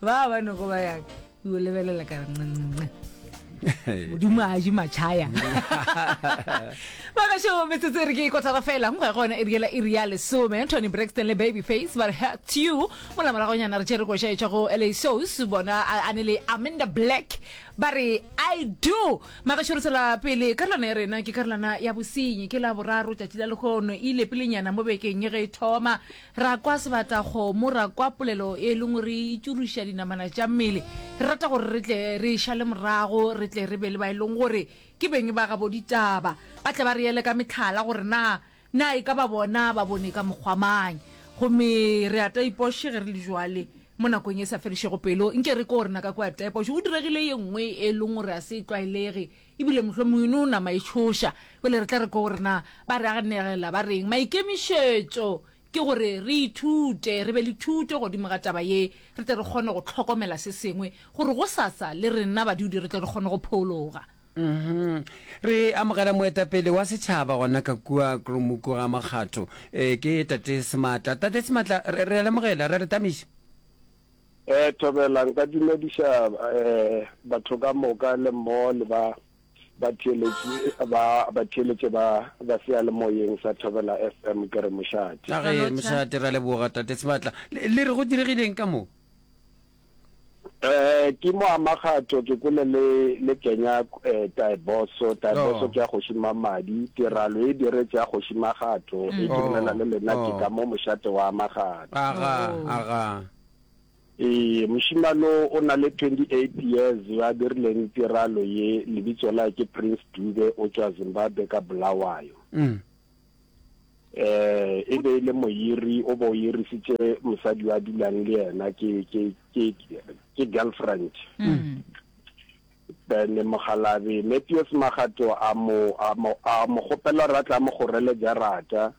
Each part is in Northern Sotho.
ba ba nego ba yang o lebelela ka nqenqenqe modimo a je matšhaya bagašo metsotso e re ke ikotara fela go ya gona e riela e ria lesome tony braxton le baby face ba re hact you mola moragonyana re tšere koša e tšwa go la sos bona a ne le amanda black ba re i do magašo re tsela pele karolwana ya rena ke karolwana ya bosenyi ke la boraro tšatši la lekgono e ile pelenyana mo bekeng ye ge e thoma Ra kwa sebatakgomo, ra kwa polelo e lengwe re e tšuruša dinamana tša mmele. Re rata gore re tle re e šale morago, re tle re be le ba e leng gore ke beng ba gabo ditaba, ba tle ba re ele ka mehlala gore na na e ka ba bona ba bone ka mokgwa mang. Gomme re a taipoše ge re le bjale, mo nakong e sa fedišego pelo. Nke re ke gore na ka kua taipoše go diregile ye nngwe e leng gore ga se e tlwaelege, E bile mohlomongwe e no nama e tšhoša. Bjale re tla re ko re na ba re anegela ba reng. Maikemišetšo ke gore re ithute, re be le thuto godimo ga taba ye, re tle re kgone go hlokomela se sengwe, gore gosasa le rena badudi re tle re kgone go phologa. Uhum. Re amogela moetapele wa setšhaba gona ka kua Kromuku ga Makgatho. Ee, ke Tate Sematla. Tate Sematla, re, re a le amogela. Re a le tamiša. Eh, Thobela, nka dumediša eh, batho ka moka le mmogo le ba batheeletši ba batheeletše ba ba seyalemoyeng sa Thobela FM ke re mošate. a ge Lalocha. mošate ra leboga tate sebatla le le re go diregileng ka moo Eh, ke mo amakgatho ke kole le le kenya eh, taeboso taeboso Oh. ke ya kgoši mamadi tiralo e diretše ya kgoši magatho e Oh. dumela le lena ke Oh. ka mo mošate wa amagatho Aga, aga. Ee, mošimano o na le 28 years yo a dirileng tiralo ye, lebitso la ke Prince Dube o tšwa Zimbabwe ka Bulawayo. Mm. Eh, e be ile moyiri o bo yirisitše mosadi wa dulang le yena ke ke ke ke girlfriend. Mm. Then mogalabe Matthews Magato a mo a mo a mo gopela ra tla mo gorele jarata.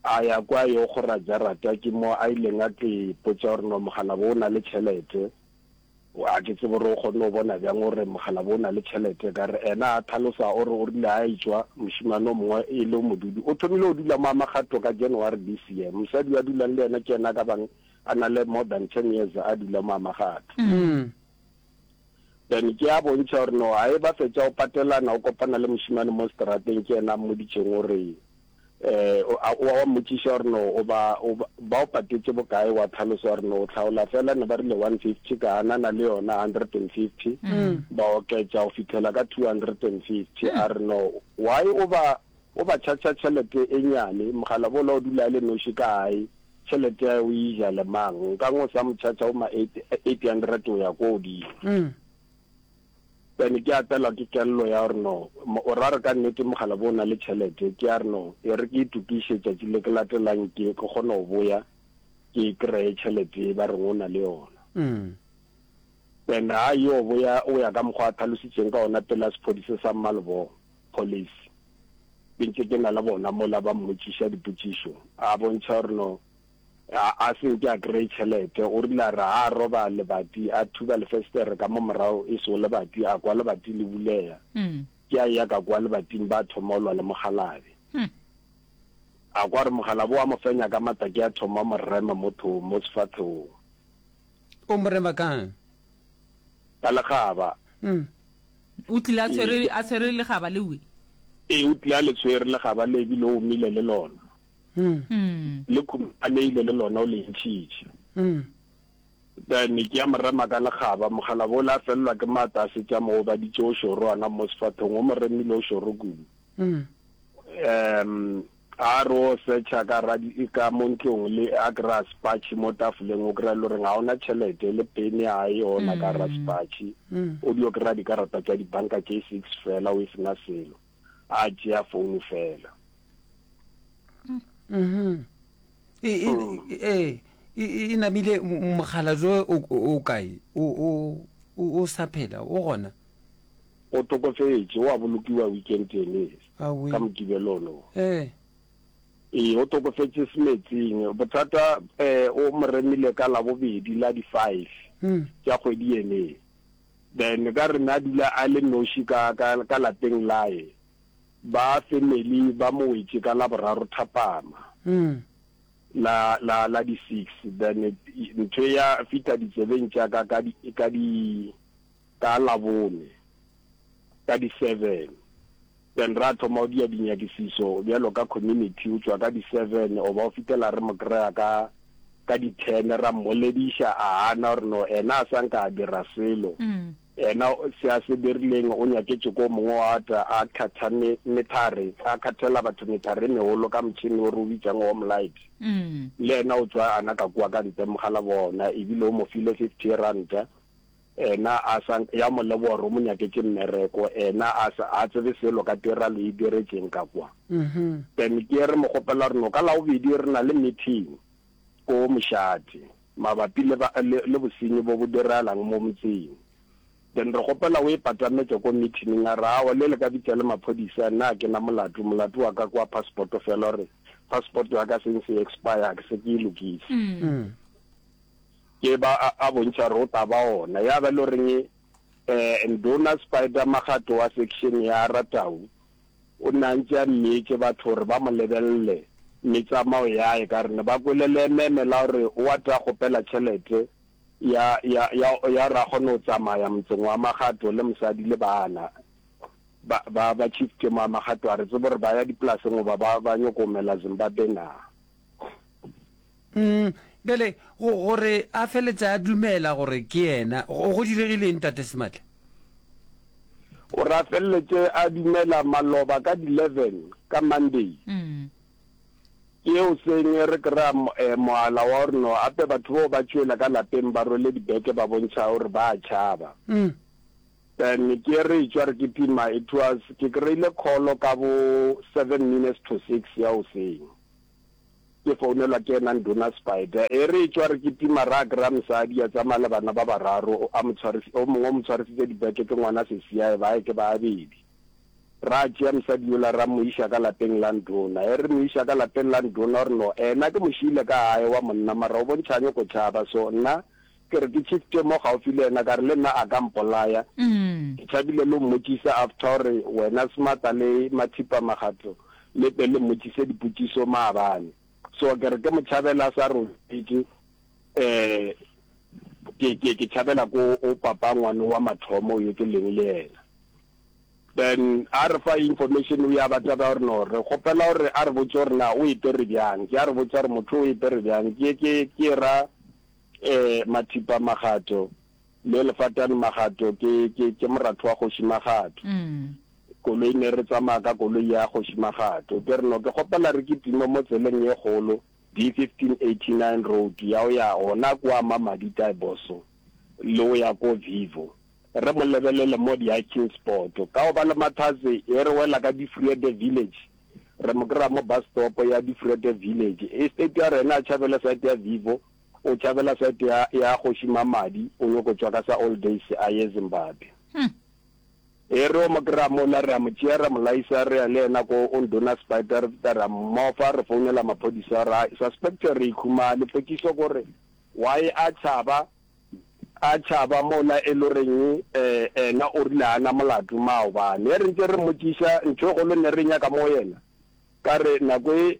a ya kwa yo kgora jarata ke mo a ileng a tlo ipotša gore no mogala bo o na le tšhelete a ke tsebe gore o kgonne go bona bjang gore mogala bo o na le tšhelete ka re ena a tlhalosa o re o rile a etswa mošimane o mongwe e le modudi o thomile go dula mo amagato ka january this year mosadi wa dulang le yena ke ena ka bang a na le more than ten years a dula mo amagato mm. Then ke a bontšha gore no a e ba fetša go patelana o kopana le mošimane mo strateng ke yena a mmoditšeng o re eh, wa mmotšiša gore no o ba ba o patetše bokae wa tlhalosa gore no o tlhaola fela ne ba rile 150 ka anana le yona 150 mm. ba oketša go fitlhela ka 250 a re no why o ba O ba charger tšhelete e nyane, mogala bola o dula a le noši ka gae, tšhelete ya o e ja le mang, nkang o sa mo charger bo ma eight, eight hundred go ya ko godimo. Then ke apelwa ke kello ya gore no, o ra re ka nnete mogala bo o na le tšhelete, ke ya re no, e re ke itokiše tšatši le ke latelang ke ke kgone go boya ke e kreye tšhelete e ba reng o na le yona. Then ga yo boya o ya ka mokgwa a thalositšeng ka ona pela sephodise sa Mmalebogo. policy. Ke ntše ke na le bona mola ba mmotšiša dipotšišo, a bontšha gore no a, a se nke a kry tšhelete. O rile a re ha a roba lebati, a thuba lefestere ka mo morago e sego lebati, a kwa lebati le bulega. Ke a eya ka kwa lebating ba thoma o lwa le mogalabe. A kwa gore mogalabe wa mo fenya ka matla, ke a thoma mo rema mo thong, mo sefathegong. O mo rema kang? ka legaba. O tlile a tshwere, a tshwere legaba le we. Ee, o tlile a le tshwere legaba le ebile o mile le lona. Le khumaneile le lona o le ntšhitše. Then ke ya morema ka legaba, mogala bole a felelwa ke maata a setse a mo obaditše o šoro ana mo sefathong, o mo remile o šoro kudu. A re o secha ka radi e ka mo ntlong le a kry-a spatšhi mo tafoleng o kry-a e le goreng ga ona tšhelete le pene a e ona ka ra spatšhi o dio kry-a dikarata tsa dibanka tše six fela o e sena selo a tšea founu fela e e e e- e namile m- mogala jo o o kae o o o- o sa phela o gona o tokofetše o a bolokiwa weekend ene Awi. ka Mokibelo ono. Ee. Ee, o tokofetse semetsing. Bothata um o mo remile ka Labobedi la di five tša kgwedi ene. Then ka re na dula a le noši ka, ka, ka lapeng lae, ba family ba mo wetše ka Laboraro thapama la, la, la di six. Then ntho ya fihla ditsebeng tša ka ka di, ka di, Ka Labone, ka di seven, then ra thoma go dia dinyakišišo bjalo ka community, o tšwa ka di seven goba go fitela re mo kry-a ka ka di ten, ra mmolediša a hana gore no ena a sa nka a dira selo, ena se a se dirileng o nyaketše ko mongwe wa tla a khatha me, methare, a khathela batho methare e megolo ka motšhini o re o bitsang home light, le ena o tšwa a naka kua ka ntle mogala bona ebile o mo file fifty ranta. Ena a sa, ya mo leboga gore o mo nyaketše mmereko. Ena a sa, a tsebe selo ka tiralo e diretšeng ka kwa. Then ke re mo kgopela gore no ka Labobedi re na le meeting ko Mošate mabapi le, le, le bosenyi bo bo diragalang mo motseng. Then re kgopela o e patametše ko meetining. A re, Aowa, le le ka bitša le maphodisa, nna ga ke na molato. Molato wa ka ke wa passport fela, gore passport ya ka since e expire ga ke se ke e lokise. Ke ba a a bontšha ro taba ona. Ya ba e lo reng eh, Nduna Spider Makgato wa section ya Ratau o ne a ntše a mmietše batho gore ba mo lebelele metsamao yae ka gore ne ba kwele leememe la gore o a tla kgopela tšhelete ya, ya, ya, ya gore a kgone go tsamaya motseng wa Makgato le mosadi le bana. Ba, ba, ba Chief Kemo wa Makgato a re tsebe gore ba ya dipolaseng goba ba, ba nyoko go mela Zimbabwe na. Umm, bjale go, gore a feletse a dumela gore ke yena, go, go diregile eng, Tate Sematla? Gore a feletse a dumela maloba ka di-leven ka Monday. Ke yeo seng re kry-a eh, mohala wa gore no ape batho bao ba tšwela ka lapeng ba rwele dibeke ba bontšha gore ba a tšhaba. Then ke re tšwa re kitima, it was, ke kry-ile call ka bo seven minutes to six ya goseng. Ke founelwa ke yena Nduna Spider. E re etšwa re kitima ra kry-a mosadi a tsamaya le bana ba bararo, o a mo tshwaris-, o mongwe o mo tshwarisitse dibeke ke ngwana sesiae, ba hae ke ba babedi. Ra tšea mosadi yola ra mo iša ka lapeng la Nduna. E re mo iša ka lapeng la Nduna o re no ena ke mo šiile ka gae wa monna mara o bontšha a nyoko tšhaba so nna Ke re ke tšhifte mo gaufi le yena ka re le nna a ka mpolaya. Ke tšhabile le go mmotšiša after gore wena Smata le Mathipa Magatlo le tle le mmotšiše dipotšišo maabane. So ke re ke mo tšhabele a sa robetše um ke tšhabela ko go papa ngwane wa mathomo yo ke leng le yena. Then a re fa information o ya ba taba ya gore no re kgopela gore a re botše gore na o e pere bjang. Ke a re botša gore motho o e pere bjang ke ke ke ra Ee, Mathipa Magato le Lefatane Magato ke, ke, ke moratho wa Kgoši Magato. Mm. Koloi ne re tsamaya ka koloi ya Kgoši Magato. Ke re no ke kgopela re kitime mo tseleng ye kgolo, D1589 road, ya o ya gona kwa Mamadi Taiboso le o ya ko Vivo. Re mo lebelele mo di-hiking spot. Ka go ba le mathatse, e re wela ka Difreede Village. Re mo kry-a mo bus stop ya Difreede Village. Estate ya rena a tšhabele site ya Vivo. O tšhabela side ya, ya kgoši Mamadi, o nyoko tšwa ka sa all days a ye Zimbabwe. Hmm. E re o mo kry-a mola, re a mo tšea, ra mo laisa, re ya le yena ko o ndona spider, re feta ra mmofa, re founela maphodisa, ra suspector, re ikhumale. Potšiso kore, why a tšhaba, a tšhaba mola e lo reng eh, ena o rile hana molato, maobane. Ge re ntse re mmotšiša, ntho e kgolo ne re nyaka mo yena, ka re nako e,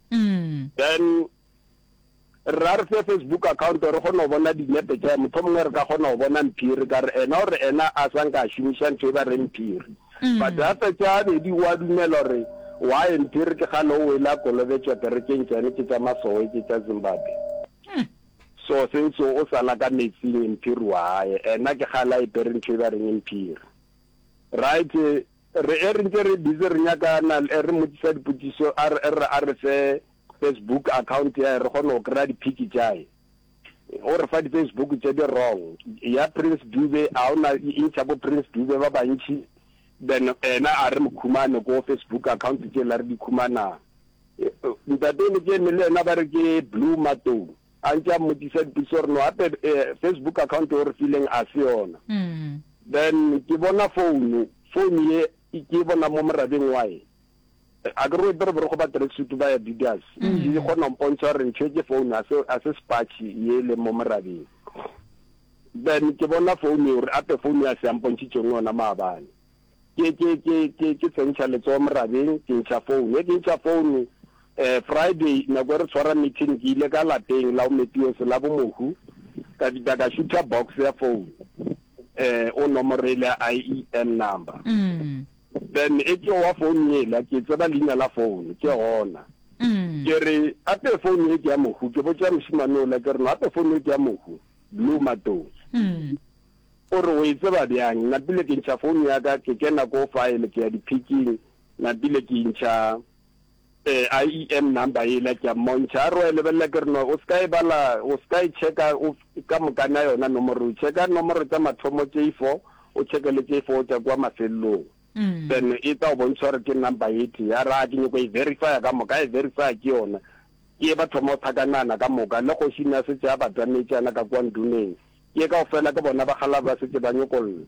then re a re fe Facebook account gore kgone go bona dinepe tša motho mongwe re ka kgona go bona mphiri ka re ena gore ena a sa nka a šomiša ntho e ba re mphiri mm. but gape tša abedi wa dumela gore wae mphiri ke gane o wela kolobetšwa kerekeng tšane ke tša masowe ke tša zimbabwe mm. so senso o sala ka metsing mphiri wa gae ena ke gala e pere ntho e ba reng mphiri right Re e re ntse re busy re nyaka na e re mmotsisa dipotšišo a re e re a re fe Facebook account ya hae re kgone go kry-a di-pic tša hae. O re fa di-Facebook tše di wrong. Ya Prince Dube a o na e ntšha bo Prince Dube ba bantši then ena a re mo khumane ko Facebook account tše la re di khumana. Ntate Lekeme le ena ba re ke Blue Matoni. A ntše a mmotšiša dipotšišo gore no gape Facebook account o re fileng a se yona. Then ke bona founu, founu ye ke bona mo morabeng wa e. A ke re o epere borokgo ba tracksuit ba ya Didas. Ke kgona go mpontšha gore ntho e ke founu a se a se spatšhi ye le mo morabeng. Then ke bona founu o re ape founu ya se a mpontšhitšeng yona maabane. Ke, ke, ke, ke, ke tsentšha letsogo morabeng, ke ntšha phone. Ge ke ntšha phone, eh, Friday, nako e re tshwara meeting, ke ile ka lapeng la Omepiose la bomohu, ka fihla ka šutha box ya phone, eh, o nomoro e le IEN number. Then e ke wa phone yela, ke tseba leina la phone, ke gona. Ke re, ape phone ye ke ya mohu, ke botša mošemane ola, ke re, no ape phone ye ke ya mohu, Blue Matong. O re, O e tseba bjang? Napile ke ntšha founo ya ka, ke kena ko file, ke ya diphiking, napile ke intšha IEM number yela, ke a mmontšha. A re, O a e lebelela? Ke re, No, o se ka e bala, o se ka e checka o ka mokana yona nomoro e. Checka nomoro tša mathomo tše i four, o checke le tše i four go tšwa kua mafelelong, then e tla go bontšha gore ke number e tee. A re, Aa, ke nyoko e verifya ka moka. A e verifya, ke yona. Ke ye ba thoma go thakanana ka moka, le kgoši ne a šetše a batametše yana ka kua nduneng. Ke kaofela ke bona ba kgalab ba setse ba nyokolla.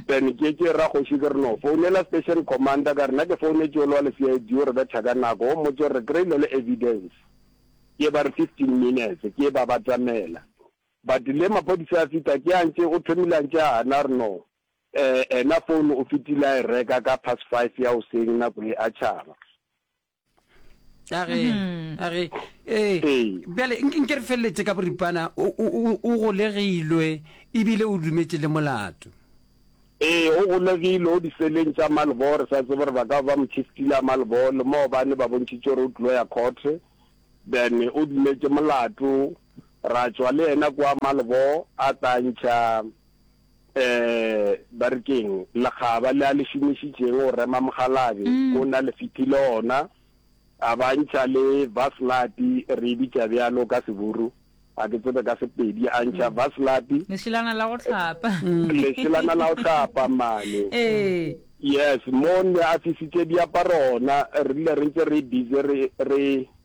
Then ke tše ra kgoši ke re no founela station commander ka re na ke founetše ole wa le CID o re betha ka nako wo mmotse gore re kreile le evidence. Ke ba re fifteen minutes ke ba batamela but le maphodisa a fita ke a ntše o thomile a ntše a hana re no eh ena phone o fitile a e reka ka past five ya hoseng nako e a tšhaba. a ge mm-hmm. a ge ee bjale nke re feleletse ka boripana o golegilwe ebile o dumetse le molato ee o golegile o diseleng tša malbo re sa tsebo re ba ka ba mochistila malbo le moo ba ne ba bontšhitse gore o tlilo ya courte then o dumetse molato ra tswa le yena kwa malbo a tla ntšha Eh, ba re keng, lekgaba le a le šomišitšeng go rema mogalabi, mm. o na le fitile ona, a ba ntšha le vaslati, re e bitša bjalo ka seburu, a ke tsebe ka sepedi, a ntšha mm. vaslati. Lešelana la go tlhapa. Mm. Lešelana la go tlhapa, mane. Eh. Yes, mo ne a fisitše diaparo ona, re rile re ntse re busy re, re,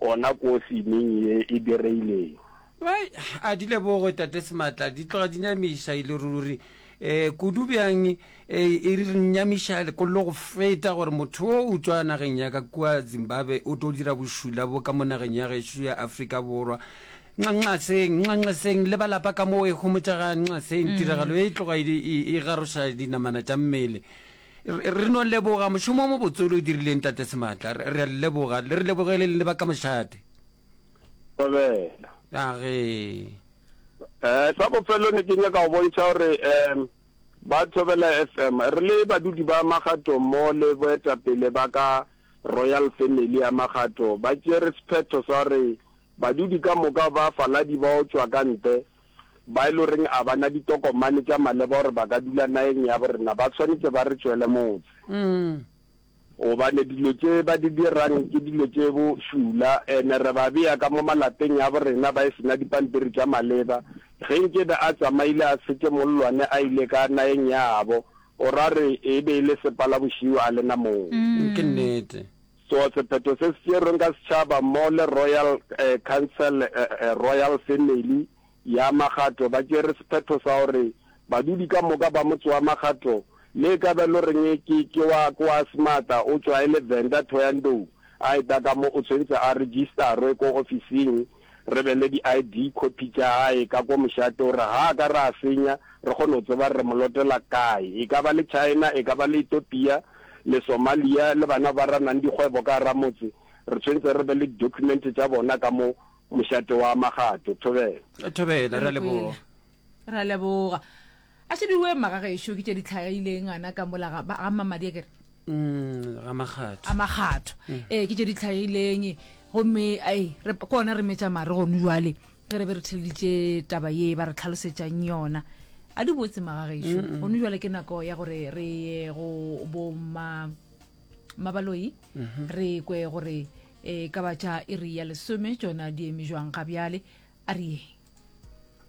Gona kosi ming ye e direileng? Bai, a di leboge Tate Sematla, di tloga di nyamiša e le ruri. E, kudu bjang e, e re nyamiša lekollo go feta gore motho wo o tšwa nageng ya ka kua Zimbabwe o tlo dira bošula bo ka mo nageng ya gešo ya Afrika Borwa. Nxaseng, nxaseng le balapa ka mo e homotša ga nxaseng, tiragalo ye e tloga e, e, e garoša dinamana tša mmele. Re no leboga mošomo o mobotse o le o dirileng, Tate Sematla. Re a le leboga. Le re lebogele le ba ka mošate. Thobela. Agee. Eh, sa bofelo ne ke nyaka go bontšha gore um ba Thobela FM re le badudi ba Magato mo le boetapele ba ka Royal Family ya Magato ba tšere sephetho sa gore badudi ka moka ba faladi bao tšwa ka ntle ba e le goreng a ba na ditokomane tša maleba gore ba ka dula nageng ya borena ba tshwanetse ba re tšwele motse gobane dilo tše ba di dirang ke dilo tše bo šula ene re ba beya ka mo malapeng ya borena ba e sena dipampiri tša maleba ge nkebe a tsamaile a setse mollwane a ile ka nageng yabo o ra re e be e le sepalabošio a lena moo ke nnete Tsoa sephetho se se tšerweng ka setšhaba mo le Royal Council, Royal Family, ya Magato ba tšere sephetho sa gore badudi ka moka ba motse wa Magato, le e ka ba e lo reng ke ke wa ke wa Smarta o tšwa e le Venda Thoyandou, a eta ka mo o tshwentse a register-we ko ofising re be le di-ID copy tša gae ka ko mošate, o re ga a ka re a senya, re kgone go tseba re mo lotela kae, e ka ba le China, e ka ba le Ethiopia, le Somalia, le bana ba ra nang dikgwebo ka gara motse, re tshwentse re be le di-document tša bona ka mo mošate wa Magato. Thobela. Thobela, re a leboga. Re a leboga. A šebiwe magagešo ke tše di tlhagileng gana ka mola ga ga mamadi a kere Mm, ga makgatho. a makgatho ee ke tše di tlhagileng gomme ai re ke ona re metša mare gone jwale ge re be re theleditše taba ye ba re tlhalosetšang yona a di botse magagešo gone jwale ke nako ya gore re ye go boma mabaloi re kwe gore um ka ba tša iri ya lesome tšona di eme jwang ga bjale a re yeng